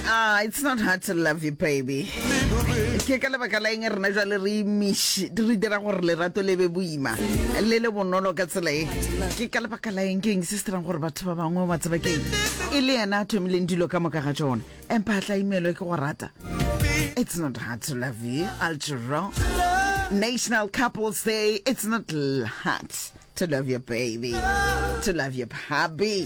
Ah, it's not hard to love you, baby. Ke ka lebaka la eng rena jwale re imish re dira gore lerato le be boima le le bonolo ka tsela e ke ka lebaka la eng ke eng se se dirang gore batho ba bangwe ba tseba keng e le yena a thomileng dilo ka moka ga tsone empa a tla imelwe ke go rata it's not hard to love you algero national couples day it's not hard to love your baby to love your hubby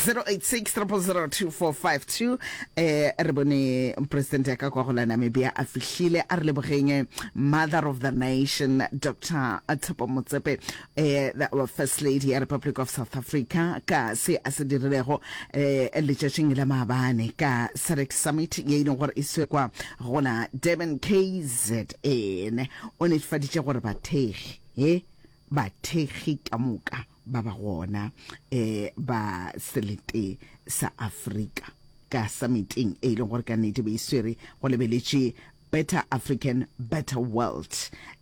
0860002452 eh re bone president ya ka kwa go la namibia a fihlile a re lebogeng mother of the nation dr tshepo motsepe eh the, our first lady ya republic of south africa ka se a se dirilego eh letšatšing la maabane ka sarex summit ye e leng gore e swe kwa go la durban kzn o netefaditše gore bathegi e bathekgi ka moka ba ba gona e, ba selete sa Afrika ka summiteng e leng gore ka nnete be e swere go lebeletše Better African, Better World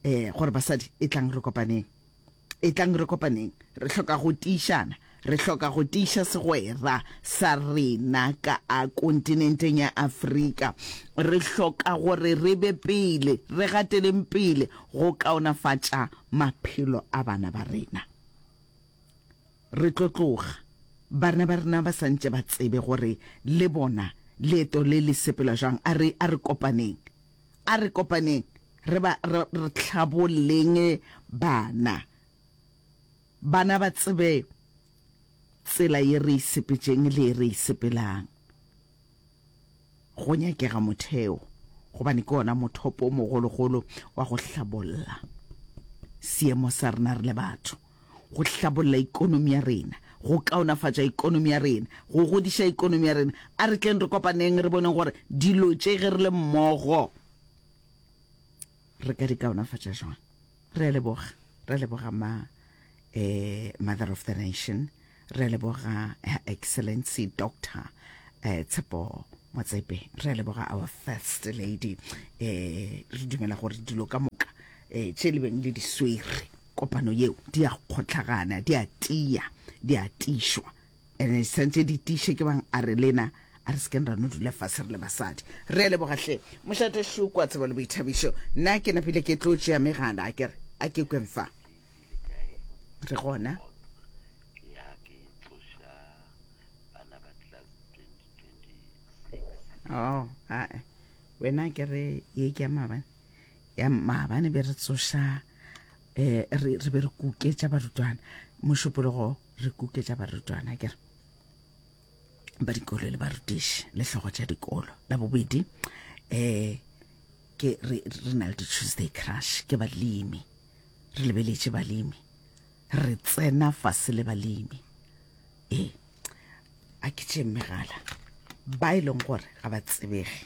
e, gore basadi e tlang re kopaneng e tlang re kopaneng re hloka go tiišana Re hloka go tiiša segwera sa rena ka a kontinenteng ya Afrika. Re hloka gore re be pele, re gateleng pele go kaonafatša maphelo a bana ba rena. Re tlo tloga barna ba rena ba santše ba tsebe gore le bona leeto le le sepela jang. A re, a re kopaneng, a re kopaneng re ba, re, re hlabolleng bana. Bana ba tsebe tsela ye re isepetšeng le ye re isepelang. Go nyakega motheo, gobane ke ona mothopo o mogologolo wa go hlabolla seemo sa rena re le batho, go hlabolla ikonomi ya rena, go kaonafatša ikonomi ya rena, go godiša ikonomi ya rena. A re tleng re kopaneng re boneng gore dilo tše ge re le mmogo re ka di kaonafatša jwang. Re a leboga. Re leboga ma eh, Mother of the Nation. Re leboga Her Excellency Doctor eh, Tshepo Motsepe. Re leboga our First Lady. Eh, re dumela gore dilo ka moka eh, tše le beng le di swere kopano yeo di a kgotlhagana, di a tia, di a tišwa. Ene e santše di tiše ke bang a re lena a re sekeng ra no dula fase re le basadi. Re a leboga hle. Mošate Šukwa, Tsebo le Boithabišo. Nna ke napile ke tlo tšea megala a ke re a ke kweng fa. Re gona. Oh, ae. Wena ke re ye ke ya maabane. Ya maabane be re tsoša eh re re be re kuketša barutwana mošupologo re kuketša barutwana ke re ba dikolo le barutiši le hlogo tša dikolo la bobedi um ke re na le di-tuesday crush ke balemi re lebeletše balemi re tsena fase le balemi ee a ke tše mmegala ba e leng gore ga ba tsebege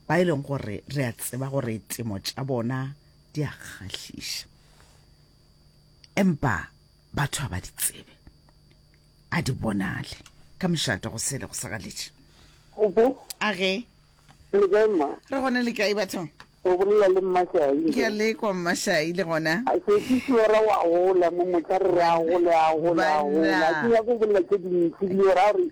ba e leng gore re a tseba gore temo tša bona di a kgahliša empa batho ga ba di tsebe a di bonale ka mošate go sele go sagaletše a ge re gone le kae bathong o bolela le mmashaile ke a lekwa mmashaile gona a se ke siora wa gola mo motla re re a gole a gole a gola ke ya go bolela tse dintsi le ora gore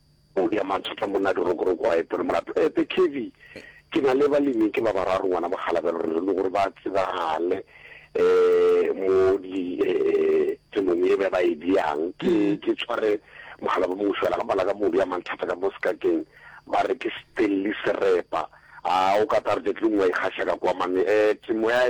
O bea mathata monna dirokoroko a epe le molato a epe Kevy ke na le balemi ke ba bararo ngwana mokgalabelo re re le gore ba tsebagale um mo di um tsemong ye ba ba e beang ke ke tshware mogala ba mongwe fela ga bala ka mo bea mathata ka mo sekakeng ba re ke Stanley Serepa a o ka target le nngwe a ikgaša ka kwa mane um temo ya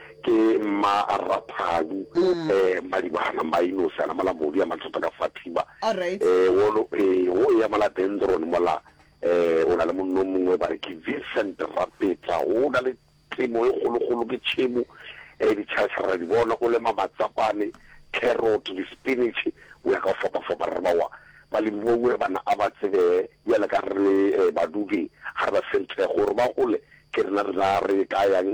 Ke mma Raphadi eh Malibana Mainosi ana mola modu ya mathata ka fa thiba eh wolo eh wo ya mola Dendron mola eh o na le monno mongwe ba re ke Vincent Rapetla o na le temo e kgolo kgolo ke tšhemo eh di tšharatšhara ra di bona o lema matsapane carrot di spinach o ya ka fapa fapa re ba wa ba le mongwe bana a ba tsebe ya le ka re eh badudi ha re ba senthe gore ba gole ke rena rena re ka yang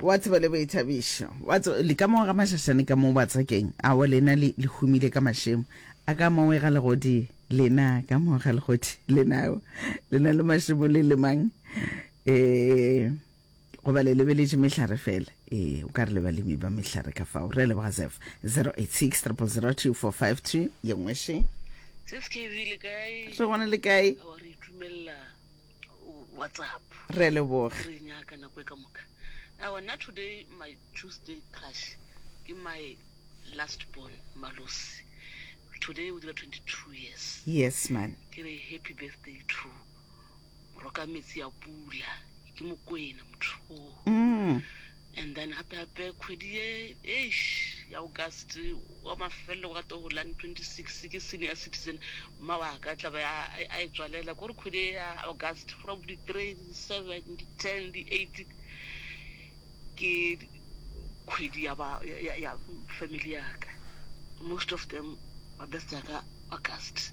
wa tseba le boithabišo wa tseba le ka moo ga mašašane ka moo batsakeng a wa lena le le humile ka mašemo a ka moo ga legodi lena ka moo ga legodi lena lena le mašemo le lemang eh goba le lebeletše mehlare fela ee o ka re le balemi ba mehlare ka fao re leboga zef 086 3002452 ye nngwe še re gona le kae WhatsApp. Re a leboga. Re nyaka nako e ka moka. Awa nna today my Tuesday crush ke my last born Malosi. Today o dira 22 years. Yes man. Ke re happy birthday to Rokametsi a pula ke Mokwena motho o. Mm. And then gape gape kgwedi ye eish ya August wa mafelelo wa to la 26 ke senior citizen mma wa ka tla ba a e tswalela gore kgwedi ya August from di 3 di 7 di 10 di 8 ke kgwedi ya ba ya family ya ka most of them ba birthday ka August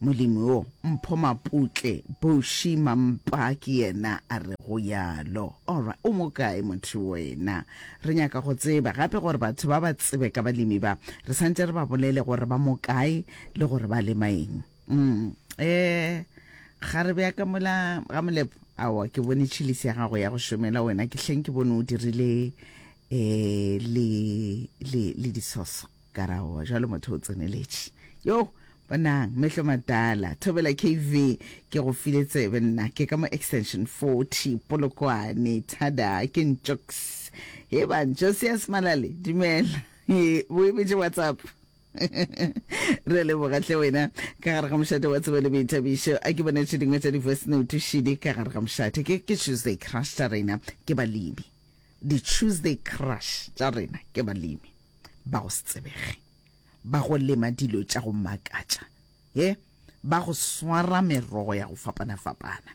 Molemi wo mpho maputle, Boshi Mampa ke yena a rego yalo. Alright, o mo kae motho wena? Re nyaka go tseba gape gore batho ba ba tsebe ka balemi ba, re santše re ba bolele gore ba mo kae le gore ba lema eng. Umm eh, kgarebe ya ka mola ga Molepo, aowa ke bone chilisi ya gago ya go šomela wena, ke hleng ke bone o dirile eh le, le, le disoso. Karaoa, jwale motho o tseneletše. Yoo, bonang, mehlo matala, Thobela KV, ke go file tsebe nna, ke ka mo extension 40, Polokwane, thada, ke ntšoks. He ban, Josias Malale, dumela, he, bo emetše WhatsApp. Re a leboga hle wena ka gare ga mošate wa tsebo le boithabišo a ke bone tše dingwe tša di-voice note šidi ka gare ga mošate ke ke tuesday crush tša rena ke balebi Di-Tuesday Crush tša rena ke balemi ba go se tsebege, ba go lema dilo tša go makatša, he, ba go swara merogo ya go fapana-fapana,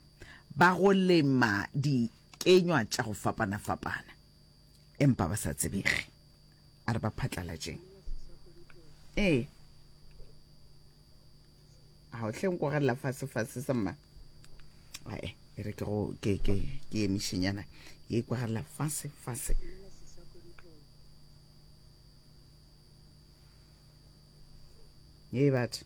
ba go lema dikenywa tša go fapana-fapana, empa ba sa tsebege. a re ba phatlalatšeng ee ga o tlheng ko galela fasefase sa mma ae e re ke go ke ke ke emišenyana ye kwa galela fasefase ye batho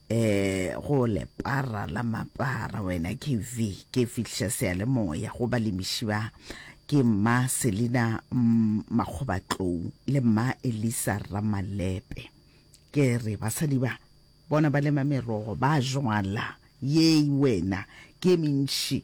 Ee, go lepara la mapara wena KV, ke fihliša seyalemoya go balemiši ba. Ke mma Selina Makgobatlou le mma Elisa Ramalepe. Ke re basadi ba, bona ba lema merogo, ba jwala. Yei wena, ke mentši.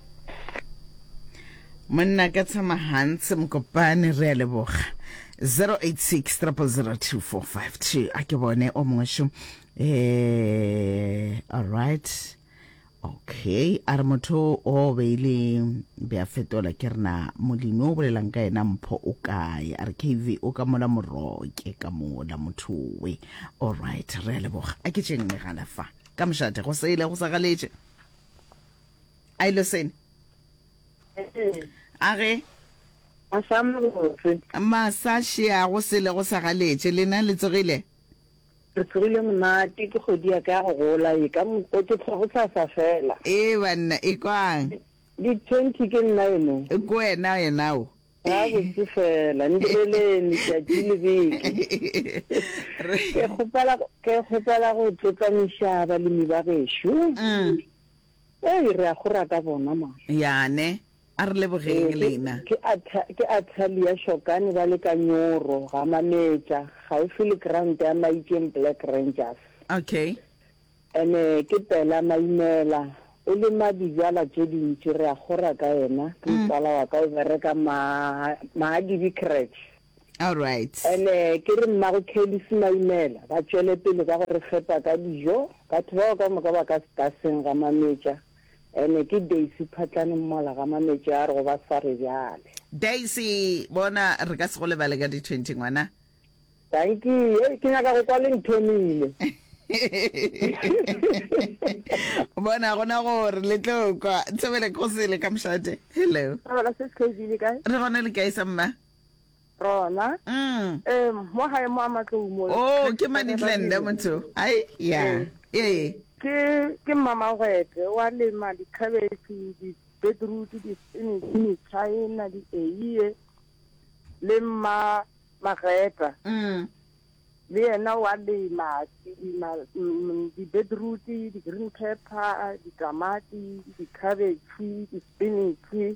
monna ka tshama gantse mokopane re a leboga 0863002452 a ke bone o mongwe šo eh alright okay a re motho o beile be a fetola ke rena molemi o bolelang ka yena mpho o kae a re kv o ka mola moroke ka mola motho we alright re a leboga a ke tšeng megala fa ka mošate go sele go sa galetše I listen. A ge? Masa mabotse. Masa shea go sele go sa galetše. Lena le tsogile? Re tsogile monate ke kgodi ya ka ya go gola e ka mokwe ke tlhogo sa sa fela. Ee banna e kwang? Di 20 ke nna eno. Ke wena yena o. Ga botse fela ndireleni tšatši le beke. Ke kgopela ke kgopela go tlotlamiša balemi ba gešo. Ee, re a go rata bona mara. Yane, a re lebogeng lena. Ee, ke, ke Atalia Shokane ba le ka Nyoro, Gamametša, kgaufsi le ground ya Maikeng Black Rangers. Okay. Ene ke Pela Maimela, o lema dijala tše dintši, re a go raka yena, ke motswala wa ka o bereka ma, Mahadibi Creche. All right. Ene ke re mmago Kelly Simaimela ba tšwele pele ka go re fepa ka dijo. Batho bao ka moka ba ka Staseng ga Mametša. Ene ke Daisy Phatlane Mmola ga Mametša a re go ba sware bjale. Daisy, bona re ka se go lebale ka di 20 ngwana. Dankie, hei ke nyaka go kwa le nthomile. Bona gona gore le tlo kwa. Thobele Kgosele ka Mošate. Hello. Thobela sis KB le kae? Re gona le kae sa mma? Rona. Mm. Eh, mo gae mo a matlou mo. Oh, ke Manitlende motho. Ai, ya. Eh. Ke ke mamagwete wa lema di cabbage, di beetroot, di spinach, di china, di eiye le mma mageta. Mm. Le yena wa lema di mm, di beetroot, di green pepper, di tamati, di cabbage, di spinach.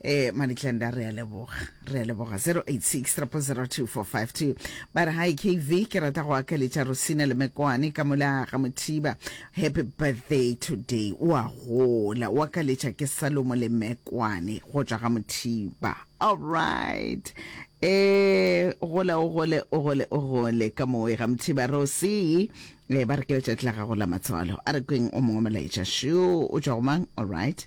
Eh, Manitlenda re a leboga re a leboga 0863002452 ba re hi kv ke rata go akaletša rosina le mekwane ka mola ga mothiba happy birthday today o a gola o akaletša ke salomo le mekwane go tšwa ga mothiba all right eh gola o gole o gole o gole ka moe ga mothiba rosi eh ba re ke letšatši la gago la matswalo a re kweng o mongwe molaetša sho o tšwa go mang all right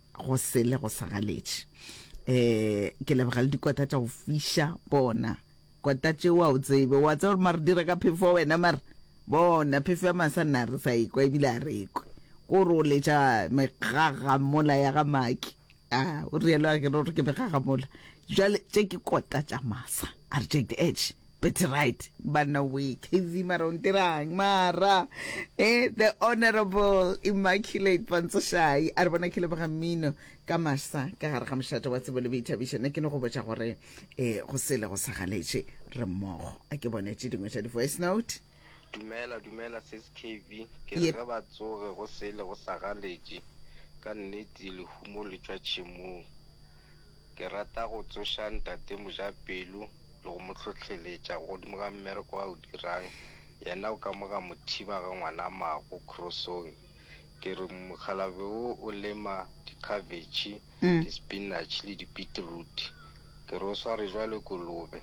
go sele go sa galetše eh ke lebega le dikota tša go fiša bona kota tše wa o tsebe wa tseba gore mare dira ka phefo wa wena mare bona phefo ya masa nna re sa ekwa ebile a re ekwe ko re o letša megagamola ya ga maki a o rielo a ke re gore ke megagamola jale tše ke kota tša masa a re tšekte etše That's right, banna we KV mara o ntirang mara eh, the honorable Immaculate Pantsoshai a re bona ke leboga mmino ka masa ka gare ga mošate wa tsebo le boithabišo nna ke ne go botša gore eh go sele go sa galetše re mmogo a ke bone tše dingwe tša di-voice note Dumela dumela sis KB ke re ge ba tsoge go sele go sa galetše ka nnete lehumo le tšwa tšhemong ke rata go tsoša ntate Mojapelo le go mo hlohleletša godimo ga mmereko a o dirang yena o ka mo ga mothiba ga ngwanamago Krosong. Ke re mokgalabje wo o lema dikhabetšhe, di-spinach le di-beetroot. Ke re o sware bjalo kolobe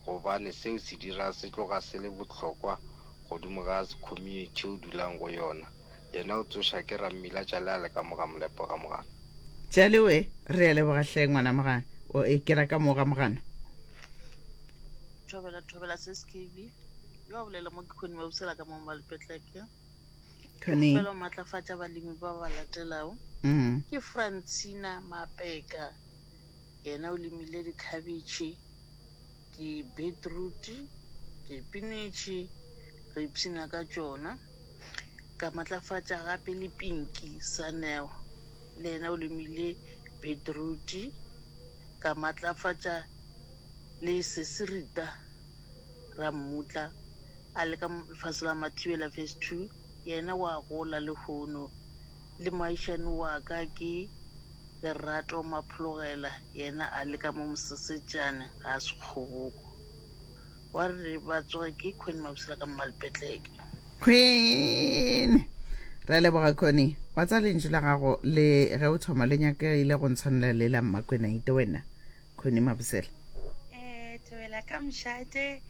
gobane seo se dira se tloga se le bohlokwa godimo ga community o dulang go yona. Yena o tsoša ke rammila Tšale a le ka mo ga molepo ga mogana. Tšale we, re a leboga hle ngwana mogana. O e kera ka mo ga mogana. Thobela, Thobela, Sis Kevy. Yo a bolela mo ke Connie Mabusela ka mo Malpetleke. Tony. Fela o matlafatša balemi ba ba latelago. Mm. Ke Francina Mapeka. Yena o lemile dikhabetšhe, di-beetroot, dipinetše, re ipshina ka tšona. Ka matlafatša gape le Pinky Saneo. Le yena o lemile beetroot. Ka matlafatša le Sesirita. ra mmutla a le ka fase la Mathibela Phase Two, yena wa gola lehono le moagišani wa ka ke Lerato Maphologela yena a le ka mo Mosesetšane ga se kgoboko. Wa re ba tsoge ke Connie Mabusela ka Mmalpetleke. Queen! Re a leboga Connie, wa tsa lentšu la gago le ge o thoma le nyakegile go ntshwanela le la Mmakwenaite wena. khone mabosela Eh, Thobela ka mošate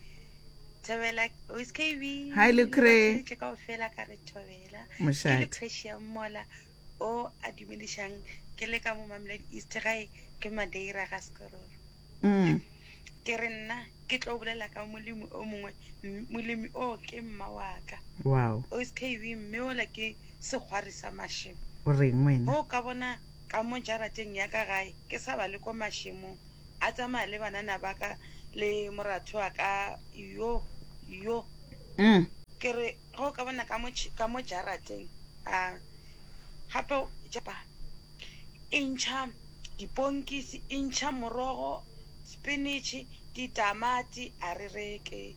Thobela o se ka e be- Hi, Lucre. Ba tšweletse kaofela ka re Thobela Ke Mošate. Lucre Shiamola o a dumedišang ke le ka mo Mamelodi East gae ke Madeira ga Sekororo Mm. ke re nna ke tlo bolela ka molemi o mongwe M- molemi o ke mma waka wow o se ka e be mme ola ke segwari sa mašemo o reng wena go ka bona ka mo jarateng ya ka gae ke sa ba le ko mašemong a tsamaya le banana ba ka le moratho wa ka yo yo mm. ke re go ka bona ka mo ka mo jarateng a gape japa e ntšha diponkisi e ntšha morogo spinach ditamati a re reke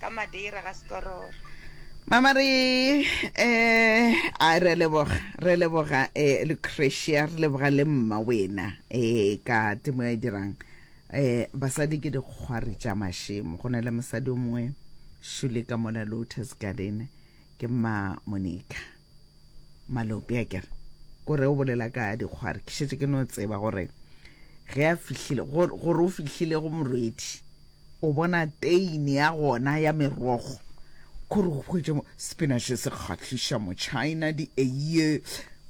ka Madeira ga sekororo. Mama re eh a re leboga re leboga eh Lucretia re leboga le mma wena eh ka temo ya dirang eh basadi ke dikgwari tša mashemo go na le mosadi o mongwe shule ka mona Lotus Garden ke mma Monica Malope a kere ko re o bolela ka dikgwari ke šetse ke no tseba gore ge a fihlile gore o fihlile go morwedi o bona teine ya gona ya merogo kore go hwetše spinach se kgahliša mo China di eiye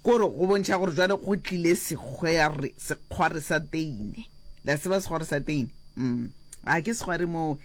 kore go bontšha gore jwale go tlile sekgwari sa teine la seba sekgwari sa teine mm a ke sekgwari mo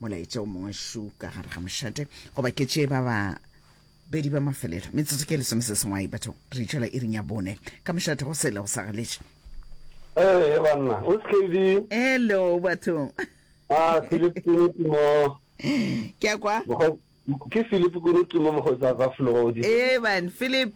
molaetša o mongwe šu ka gare ga mošate goba ke tše ba ba bedi ba mafelelo metsotso ke lesome se sengwai batho re itšwela e rinya bone ka mošate go sele go sa galetše ee banna o sekedi elo bathong a ah, philip kunutimo ke a kwa ke philip kunutimo mokgotsi a ka flogodi ee ban philip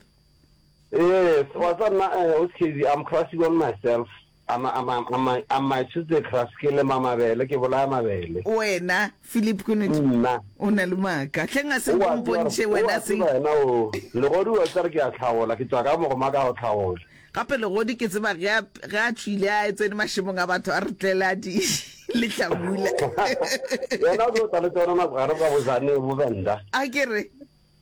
ee wa tsa nna eh, o sekedi i'm crushing on myself A ma, a ma, a ma, a mašitse Kras ke lema mabele, ke bolaya mabele. Wena, Filip, ke nnete. Nna. O na le maaka. Hleng a se o mpontšhe wena se. O a tseba yena o, Legodi o etla re ke a hlagola, ke tšwa ka mogoma ka go hlagola. Gape Legodi ke tseba ge a, ge a tšwile a tsene mašemong a batho a re tlele a di lehlabula. Yena o tlo tla le tsona nako gare kwa Bozane, Bovenda. A ke re.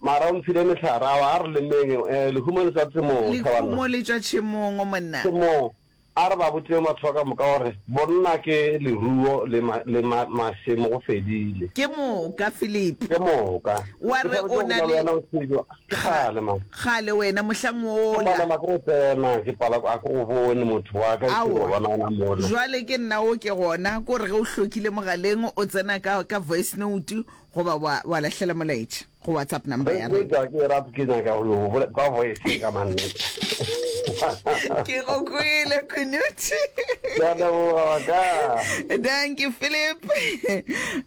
Mara o nfile mehlare, awa a re lemeng e, lehumo le tšwa tšemong, thabanna. Lehumo le tšwa tšemong, monna. Tšemong. A re ba botšeng batho ba ka moka gore bonna ke leruo le ma, le ma, mašemo, go fedile. Ke moka, Philip. Ke moka. Wa re o na le. Ke sa botše go bolela le wena Nkgwijo, kgale man. Kgale wena, mohlang wola. Ke palelwa ke go tsena, ke pala, a ke go bone motho wa ka, ke go bona gona mola. Jwale ke nna wo ke gona, ke gore ge o hlokile mogaleng, o tsena ka, ka voice note, Goba wa, wa lahlela molaetša, go WhatsApp number ya rena. Etšwa ke e rata, ke nyaka go yo bolela kwa voice e ka mannete. Ke go kwele, Kunuthi. Ke a leboga wa ka. Thank you, Philip.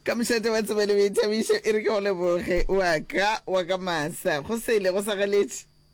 Ka mošate wa tsebo le boithabišo, e re ke go leboge wa ka, wa ka Masa. Go sele, go sa galetše.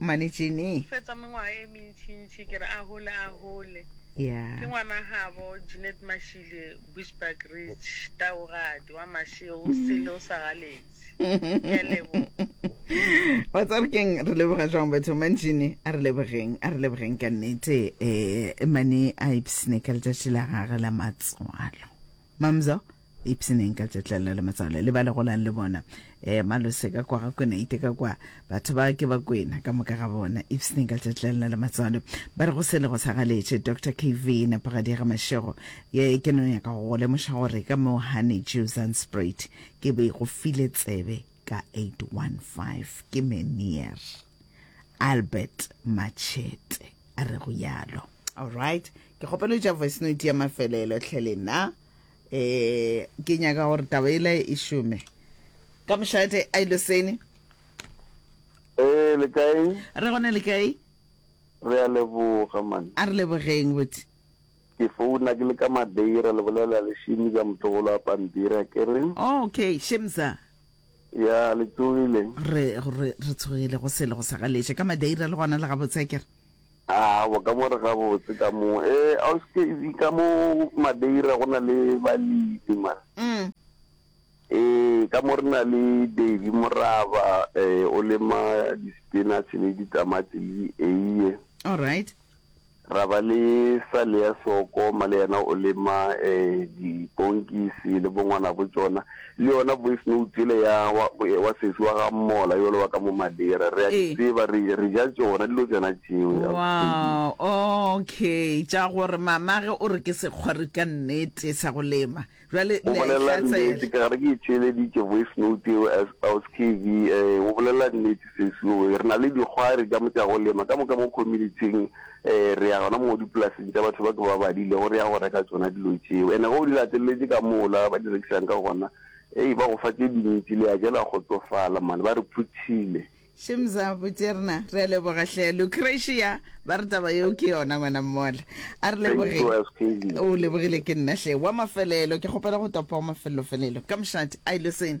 Mane Jeanny. O fetsa mengwaga e mentšintši, ke re a hole, a hole. Yeah. Ke ngwana gabo Jeanette Mashile, Bushbuck Ridge, Taogadi, wa Masheo, o sele, o sa galetse. Ke a leboga. Wa tsare keng re leboga jwang batho man Jeanny, a re lebogeng, a re lebogeng ka nnete. Eh, mane a ipsne ka letšatši la gage la matswalo. Mamzo. Ipshineng ka tšetlello le matswalo le ba le golang le bona. Eh, Malose ka kwa ga kwena, ite ka kwa. Batho ba ke ba kwena, ka moka ga bona. Ipshineng ka tšetlello le matswalo. Ba re go sele go sa galetše. Doctor KV, Nepagadi ya ga Mashego. Ye, ke no nyaka go go lemoša gore ka mo Honey Jew Zandspruit ke be go file tsebe ka 815. Ke Menier. Albert Matšhete a re go yalo. Alright. Ke kgopela o tša voice note ya mafelelo hle le na. um ke nyaka gore taba ele e šome ka mošate a ile sene ee le kae re gone le kae re a leboga man a re lebogeng botse ke founa ke le ka madeira le bolela le šimi ka motlogolo a pampiri a kere okay shemsa ya le tsogile re re re tshogile go sele go sa galeše ka madeira le gona le gabotse a kere A bo ka mo re gabotse ka mo. E, a o seke e ka mo Madeira go na le balemi man. Mm. E, ka mo re na le Davy Moraba, e, o lema di spinach le di tamati le di eiye. All right. Ra ba le Salea Soko, male yena o lema e di ponkisi le bongwana bo tsona. Le yona voice note yele ya wa, wa sesi wa ga Mmola yole wa ka mo Madira re a di Ee. tseba re, re ja tšona dilo tšona tšeo. Ausi Tedi. Wow, okay, tša gore mamage o re ke sekgwari ka nnete sa go lema, bjale O le a e bolela nnete hlatsela. ka gore ke e theeleditše voice note eo as Ausi KV. Eh, o bolela nnete sesi owe, re na le dikgwari tša mo tša go lema ka moka mo community-ing. Ee, re ya gona mo dipolaseng tša batho ba ke ba badilego, re ya go reka tšona dilo tšeo. Ene ge o di lateleletše ka mola ba di rekisang ka gona, ei, ba go fa tše dintši, le ya ja la kgotsofala mane, ba re phuthile. Shimza Bujerna, re a leboga hle. Lucretia, ba re taba yeo ke yona ngwana mmola. A re Thank leboge. you, SKV. O lebogile ke nna hle. Wa mafelelo, ke kgopela go topa wa mafelelo-felelo ka mošate. Ai, Luseni.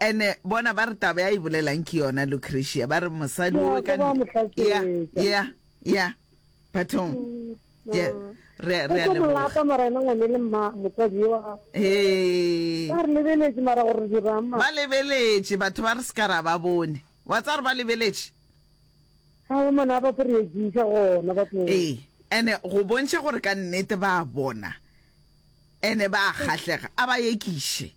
Ene bona ba re taba ya e bolelang ke yona Lucretia ba re mosadi o ka ya ya ya bathong ya re re le mo lata mara ena ngwane le mma motsadi wa eh ba re lebeletse mara gore di rama ba lebeletse batho ba re se ka ra ba bone wa tsare ba lebeletse ha o mona ba pere di sa gona ba tlo eh ene go bontsha gore ka nnete ba bona ene ba kgahlega a ba yekishe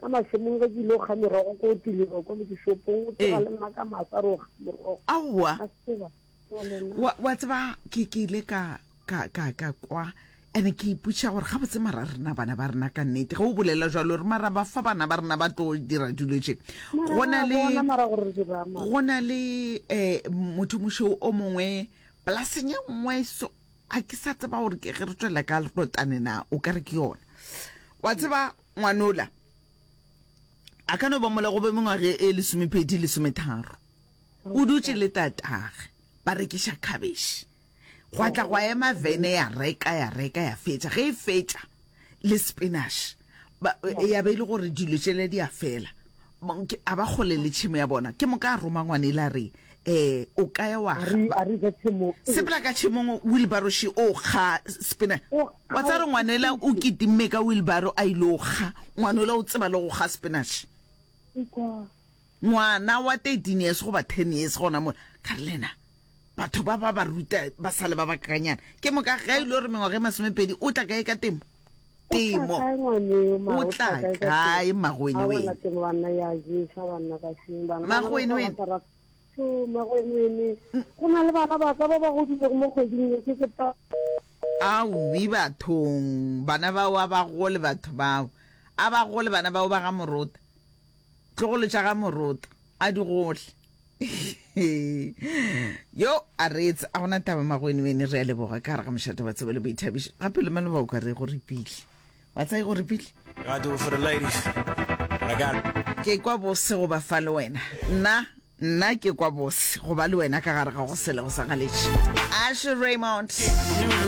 Ka mašemong ge ke ile go kga merogo ko tilelo ko lekešopong o tseba le nna ka masa re o kga merogo aowa wa, wa tseba ke ke ile ka ka ka ka kwa ene ke iputša gore ga botse mara rena bana ba rena ka nnete ge o bolela jalo re mara ba fa bana ba rena ba tlo dira dilo tše go na le go na le um motho mošo o mongwe polaseng e nngwe so a ke sa tseba gore ke ge re tswela ka lerotane na o ka re ke yona wa tseba Ngwanola a ka no ba mola go be mengwage e lesomepedi, lesometharo. O dutše le tatagwe, ba rekiša khabešhe. Gwa tla gwa ema vene ya reka, ya reka, ya fetša. Ge e fetša, le spinach, ba, ya be e le gore dilo tšela di a fela. Monke a ba kgole le tšhemo ya bona. Ke moka a roma ngwanele a re, Ee, o ka ya wa kga. A re, Ga se mo. Sepela ka tšhemong, wilbaro še o kga. Spina. Wa tsaya re ngwanela o kitimme ka wilbaro a ile o kga. Ngwanola o tseba le go kga spinach. Ngwana wa 13 years goba 10 years gona mola. Ka re, Lena. batho ba ba ba ruta ba sale ba bakakanyana ke moka ge e le gore mengwaga e masomepedi o tla kae ka temo temo o tla kae magoene wene magoene wene go na le bana ba ka ba ba godilego mo kgweding e ke sepa awi bathong bana bao a ba gole batho bao a ba gole bana bao ba ga morota Tlogolo tša ga Moroto a di gohle. Yo a reetse a gona taba magwenwene re a leboga ka gare ga mošate wa tsebo le boithabišo gape le maloba o ka re go repile wa tsa e go repile ke kwa bose go ba fa le wena nna nna ke kwa bose go ba le wena ka gare ga go selego sa galetše ashe raymond